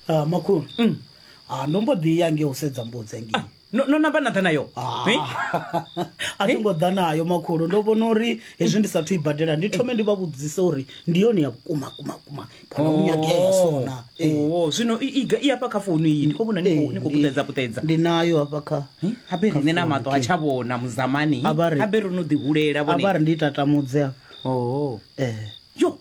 Ah, makhulu Mm. Ah, ndo mbo ḓi ya nge u sedza mbudzi engei no no namba na ḓa nayo Ah. Eh? a thi ngo ḓa nayo makhulu ndo vhona uri hezwi ndi sathu i badela ndi thome ndi vha vhudzise uri ndi yone ya vhukuma kuma kuma kana u nyagea sona Eh, Oh, zwino i- i ga- i afha kha founu iyi ndi khou vhona ni khou- eh, ni khou ndi- puṱedza puṱedza ndi nayo hafha kha Eh, habe riṋe na maṱo ha tsha vhona muzamani A vha ri- habe ro no ḓihulela a vha vhone ri ndi tatamudze hafha Oh. eh yo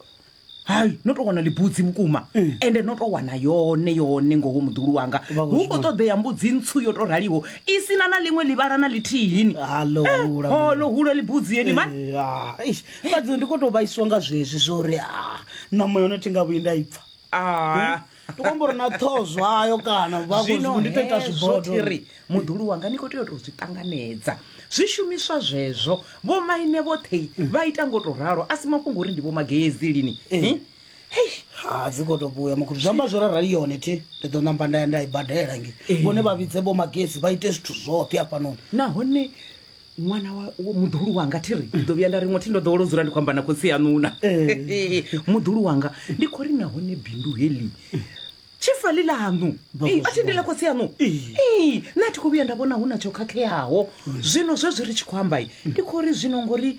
hai no tou wana ḽibudzi vhukuma mm. ende no tou wana yone yone ngoho muḓulu wanga hu khou ṱoḓea mbudzi ntswu yo tou raliho i sina na ḽiṅwe ḽivhala na ḽithihini holo eh, hula ḽibudzi yeni mani eh, fhadzi ndi khou tou vhaiswa nga zwezwi zwo uri ah, ṋama yone thi nga vhuyi nda i pfa ah, hmm? tokombori na ṱhoho zwayo kana vhazvino ndi to ita zvibodoiri muḓulu wanga ni kho tea u tou zwi ṱanganedza zwishumiswa zwezwo vho maine vhoṱhe vha ita ngo to ralo a si mafhungo uri ndi vho mageyezi lini eh. eh? ha dzi khou tou vhuya makhulu zwi amba zwo rarali yone thi ndi ḓo namba nda ya nda i badela nge eh. vhone vha vhidze vho magezi vha ite zwithu zwoṱhe afhanoni nahone ṅwana wa wa- muḓuhulu wanga thi ri ndi ḓo vhuya nda ri ṅwathi ndo ḓowela u dzula ndi khou amba na khotsi yaṋuna muḓuhulu wanga ndi khou ri nahone bindu heḽi tshifali ḽaṋu Ee, a thi ndi ḽa khotsi yaṋu Ee, nṋe a thi khou vhuya nda vhona hu na tsho khakheaho zwino zwezwi ri tshi khou ambai ndi khou ri zwino ngori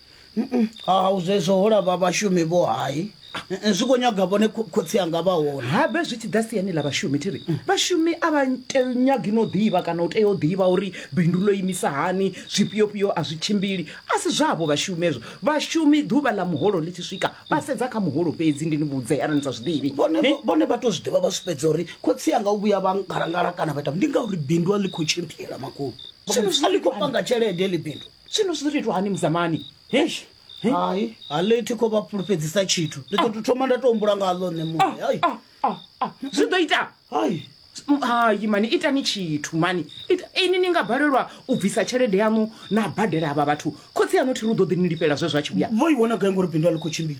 ha u zwezwo ho lava vhashumi vho hai Eh, zwi khou nyaga vhone kho- khotsi anga vha hone habe zwi tshi ḓa siani ḽa vhashumi thi ri vhashumi a vha te- nyagi no ḓivha kana u tea u ḓivha uri bindu ḽo imisa hani zwifhiofhio a zwi tshimbili a si zwavho vhashumi ezwo vhashumi ḓuvha ḽa muholo ḽi tshi swika vha sedza kha muholo fhedzi ndi ni vhudze arali ni sa zwi ḓivhi vhone Ni- vhone vha to zwi ḓivha vha zwi fhedza uri khotsi anga u vhuya vha ngalangala kana vha ita ndi ngauri bindu a ḽi khou tshimbila makhulu Zwino zwi a ḽi khou panga tshelede ḽi bindu Zwino zwi ḓo tou itwa hani muzamani? Eish. He? Hai, a ḽi thi khou vha fhulufhedzisa tshithu. Ndi ḓo tou thoma nda tou humbula nga ḽo nṋe muṋe. Hai. Ah, ah, ah. Zwi ḓo ita. Hai. Mm, Hai mani itani tshithu mani. Ita ini ni nga balelwa u bvisa tshelede yanu na badela avha vhathu. Khotsi aṋu thi ri u ḓo ḓi ni lifhela zwe zwa tshi vhuya. Vho i wana gai ngori bindu a ḽi khou tshimbila?